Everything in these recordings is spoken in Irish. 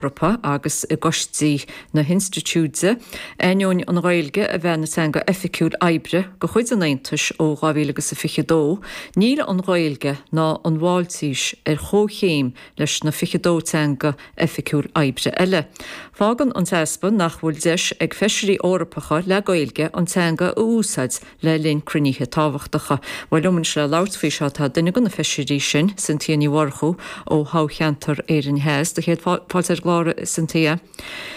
hEorpa agus i gcoistí na hInstitiúide, ainneoin an Ghaeilge a bheith ina teanga oifigiúil oibre de chuid an Aontais ó 2022, níl an Ghaeilge ná an Mháiltís ar chomhchéim leis na 22 teanga oifigiúil oibre eile. Fágann an t-easpa nach bhfuil deis ag Feisirí Eorpacha le Gaeilge an teanga a úsáid le linn cruinnithe tábhachtacha. Bhuel, liom anois le labhairt faoi seo, tá duine de na feisirí sin, Cynthia Ní Mhurchú ó thoghcheantar Éirinn Theas, sé do chéad fáilte ar an gclár, a Cynthia.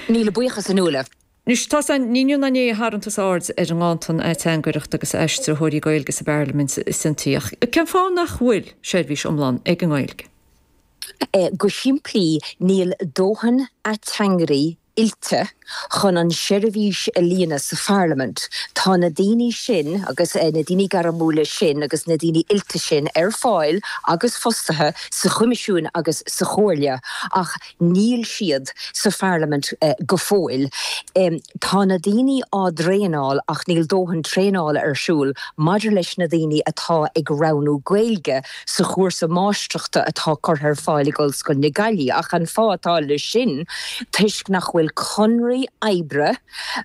Míle buíochas, a Nuala. Anois, is dócha ní inniu ná inné a tharraing tusa aird ar an nganntan san ateangaireacht agus aistritheoirí Gaeilge sa bParlaimint, a Cynthia, ach cén fáth nach bhfuil seirbhís iomlán ag an nGaeilge? Go simplí, níl dóthain ateangairí oilte chun an seirbhís a líonadh sa Pharlaimint. Tá na daoine sin, agus na daoine gairmiúla sin agus na daoine oilte sin ar fáil agus fostaithe sa Choimisiúin agus sa Chomhairle ach níl siad sa Pharlaimint go fóill. Tá na daoine á dtraenáil ach níl dóthain traenála ar siúl maidir leis na daoine atá ag roghnú Gaeilge. sa chúrsa máistreachta atá curtha ar fáil ag Ollscoil na Gaillimhe, ach an fáth atá leis sin toisc nach bhfuil conarthaí oibre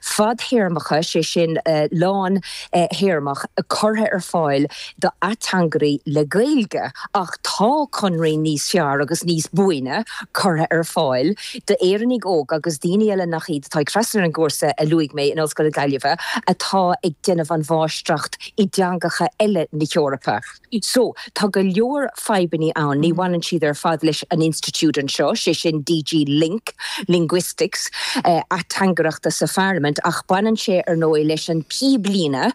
fadthéarmacha, sé sin, lán-théarmach, curtha ar fáil do ateangairí le Gaeilge, ach tá conarthaí níos fearr agus níos buaine curtha ar fáil d'Éireannaigh óga agus daoine eile nach iad atá ag freastal ar an gcúrsa a luaigh mé in Ollscoil na Gaillimhe atá ag déanamh an mháistreacht i dteangacha eile na hEorpa. So, tá go leor fadhbanna ann. Ní bhaineann siad ar fad leis an institiúid anseo, sé sin DG Link, Linguistics, ateangaireachta sa Pharlaimint, ach baineann sé ar ndóigh leis an píblíne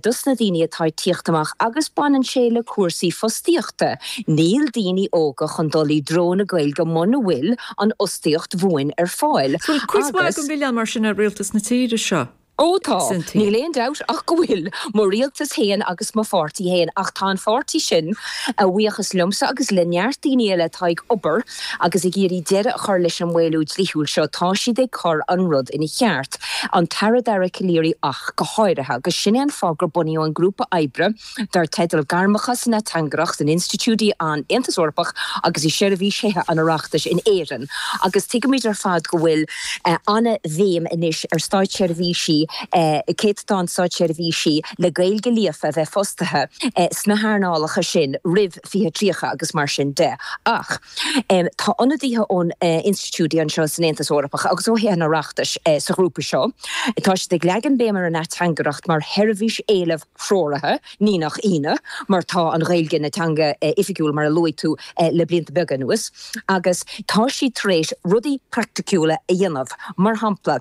dos na daoine atá ag teacht amach agus baineann sé le cúrsaí fostaíochta. Níl daoine óga chun dul i dtreo na Gaeilge muna bhfuil an fhostaíocht bhuan ar fáil. Bhfuil cuid mhaith den mhilleán mar sin ar rialtas na tíre seo? Ó tá. Níl aon dabht ach go bhfuil mo rialtas fhéin agus mo pháirtí fhéin, ach tá an páirtí sin, a bhuíochas liomsa agus le neart daoine eile atá ag obair agus ag iarraidh deireadh a chur leis an maolú dlíthiúil seo, tá siad ag cur an rud ina cheart, an tAire Dara Calleary ach go háirithe, agus sin é an fáth gur bunaíodh an grúpa oibre. dar teideal Gairmeacha san Ateangaireacht in Institiúidí an Aontas Eorpach agus i Seirbhís Thithe an Oireachtais in Éirinn agus tuigimid ar fad go bhfuil an-bhéim anois ar státseirbhísí, céatadán státseirbhísí le Gaeilge líofa a bheith fostaithe sna hearnálacha sin roimh 2030 agus mar sin de. Ach tá ionadaithe ó na hInstitiúidí anseo san Aontas Eorpach agus ó Thithe an Oireachtais sa ghrúpa seo. Tá siad ag leagan béim ar an ateangaireacht mar sheirbhís éileamh. threoraithe, ní nach ionadh, mar tá an Ghaeilge ina teanga oifigiúil, mar a luaigh tú, le blianta beaga anuas, agus tá siad tar éis rudaí praiticiúla a dhéanamh. Mar shampla,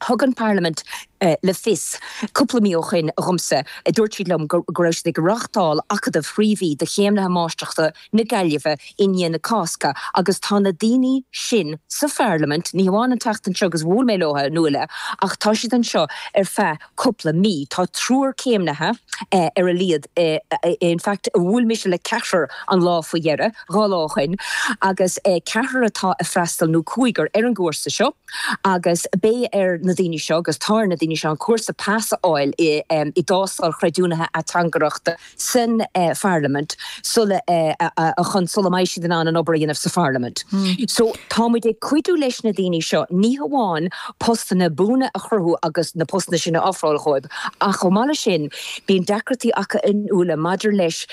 thug an Pharlaimint le fios cúpla mí ó shin dhomsa, dúirt siad liom go raibh siad ag reáchtáil acadamh trí mhí do chéimnithe Máistreachta, na Gaillimhe i ndiaidh na Cásca agus tá na daoine sin sa Pharlaimint, ní hamháin an tseachtain seo agus bhuail mé leo, a Fhionnuala, ach tá siad anseo ar feadh cúpla mí. Tá triúr céimnithe ar a laghad, in fact bhuail mise le ceathrar an lá faoi dheireadh, dhá lá ó shoin, agus ceathrar atá a' freastal, nó cúigear, ar an gcúrsa seo agus beidh ar na daoine seo, agus tá ar na daoine seo, an cúrsa pas a fháil i dtástáil chreidiúnaithe ateangaireachta. san Pharlaimint sula sula mbeidh siad in ann an obair a dhéanamh sa Pharlaimint. So tá muid ag cuidiú leis na daoine seo ní hamháin postanna buana a chruthú agus na postanna sin a ofráil dhóibh ach chomh maith leis sin bíonn deacrachtaí acu, a Fhionnuala, maidir leis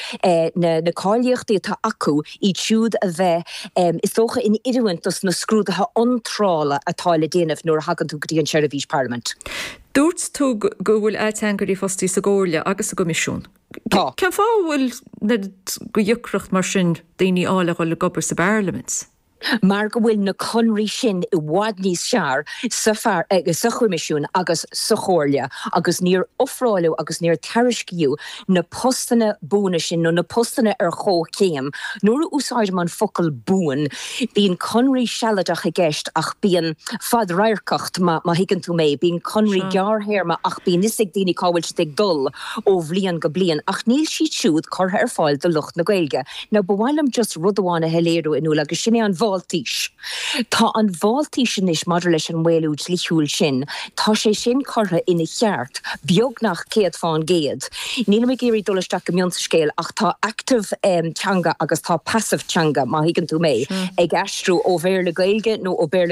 na na cáilíochtaí atá acu iad siúd a bheith is dócha in oiriúint dos na scrúduithe iontrála atá le déanamh nuair a thagann tú go dtí an tSeirbhís Parlaiminte. Dúirt tú go bhfuil ateangairí fostaithe sa gComhairle agus sa gCoimisiún. Tá. Cén fáth a bhfuil de dheacracht mar sin daoine a fháil a dhul ag obair sa bParlaimint? Mar go bhfuil na conraí sin i bhfad níos fearr sa Choimisiún agus sa Chomhairle agus níor ofráileadh agus níor tairiscíodh na postanna buana sin, nó na postanna ar chomhchéim. Nuair a úsáidim an focal buan, bíonn conradh sealadach i gceist, ach bíonn fadradharcacht, má thuigeann tú mé. Bíonn conradh gearrthéarma, ach bíonn fhios ag daoine cá bhfuil siad ag dul ó bhliain go bliain, ach níl siad siúd curtha ar fáil do lucht na Gaeilge. Now, ba mhaith liom just rud amháin a shoiléiriú, a Fhionnuala, agus sin é an Mháltais. Tá an Mháltais anois maidir leis an maolú dlíthiúil sin. Tá sé sin curtha ina cheart, beagnach céad fán gcéad. Nílim ag iarraidh dul isteach go mion sa scéal, ach tá active teanga agus tá passive teanga, má thuigeann tú mé, ag aistriú ó Bhéarla-Gaeilge nó ó Bhéarla,